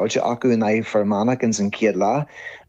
faighte acu in aghaidh Fir Manach ins an chéad leath.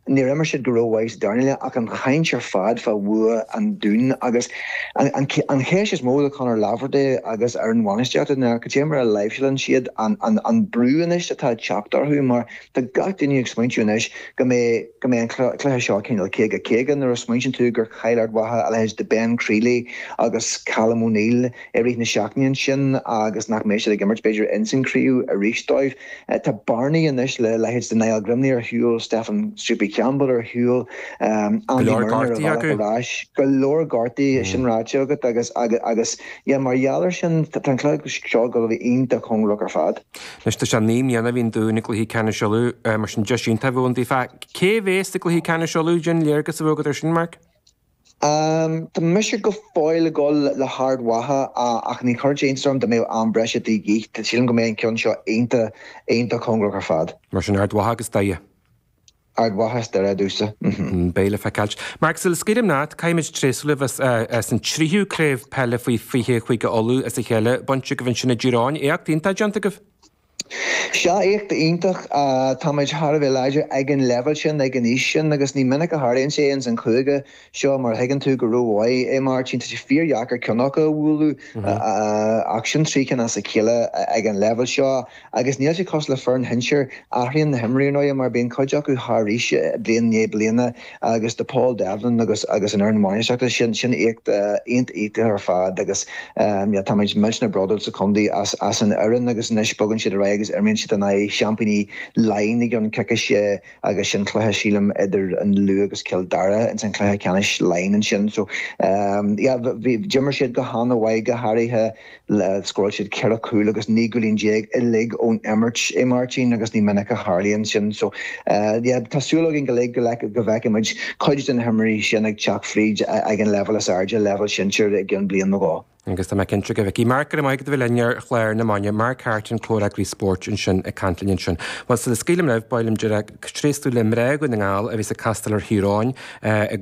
Níor imir siad go ró-mhaith sa darna leath ach an chaint ar fad fá bhua an Dúin agus an cheist is mó ar Conor Laverty agus ar an bhainistíocht ná cad é mar a láimhseálann siad an brú anois atá ag teacht orthu mar tá gach duine ag smaointiú anois go mbeidh an cluiche seo cineál caoga caoga nuair a smaointíonn tú gur chaill Ard Mhacha a leithéid de Ben Crealey agus Callum O'Neill i rith na seachtaine ansin agus nach mbeidh siad ag imirt b'fhéidir ins an chraobh arís dóibh. Tá bearnaí anois le leithéid de Niall Grimley ar shiúl, Stefan Soupy Campbell ar shiúl, Andy Murnin ar a bhealach ar ais. Go leor gortaí acu. Go leor gortaí, sin ráite agat agus agus yeah mar gheall ar sin tá an cluiche seo ag gabháil a bheith iontach cóngarach ar fad. Anois tá sé naoi mbliana ó bhí an Dún i gcluiche ceannais Uladh, mar sin deis iontach a bheadh ann daofa. Cé a bhéas sa gcluiche ceannais Uladh? Cén léargas a bheadh agat ar sin, Mark. Tá mise go fóill ag dul le hArd Mhacha ach ní chuirfeadh sé iontas orm dá mbeadh am breise de dhíth. Sílim go mbeidh an ceann seo iontach, iontach cóngarach ar fad. Mar sin, Ard Mhacha agus Doire. Ard Mhacha is Doire a deir tusa. Beidh le feiceáil. Mark, sula scaoilim leat, caithfimid tréaslú libh as an tríú craobh peile faoi 20 i Chúige Uladh as a chéile bainte agaibh ansin i dTír Eoghain. Éacht iontach déanta agaibh. Sea éacht iontach. Táimid thar a bheith láidir ag an leibhéal sin, ag an aois sin agus ní minic a tharlaíonn sé ins an chúige seo mar a thuigeann tú go rómhaith é Máirtín, tá sé fíordheacair ceann acu a bhuachaint ach sin trí cinn as a chéile ag an leibhéal seo agus níl sé cosúil le foireann shinsir, athraíonn na himreoirí ar ndóigh mar bíonn cuid acu thar aois bliain i ndiaidh bliana. agus do Paul Devlin agus agus an fhoireann bhainistíochta. Sin sin éacht iontach ar fad agus yeah táimid millteanach brodúil sa chontae as as an fhoireann agus anois bogann siad ar aghaidh agus imríonn siad in aghaidh seaimpíní Laighin i gceann coicíse agus sin cluiche sílim idir an Lú agus Cill Dara ins an cluiche ceannais Laighin ansin so yeah d'imir siad go han-mhaith go háirithe Scóráil siad ceithre chúl agus naoi gcúilín déag uilig ón imirt a Mháirtín agus ní minic a tharlaíonn sin. So, yeah, tá súil againn uilig go bhfeicfidh muid cuid de na himreoirí sin ag teacht fríd ag an leibhéal is airde, leibhéal sinsir, i gceann bliain nó dhó. Agus tá mé cinnte go bhfeicfidh. Mark, go raibh maith agat a bheith linn ar Chlár na Maidine. Mark Harte, Comhfhreagraí Spóirt ansin ag caint linn ansin. Bhuel, sula scaoilim libh, ba mhaith liom ar deireadh, tréaslú le mná Dhún na nGall a bheas ag castáil ar Chiarraí in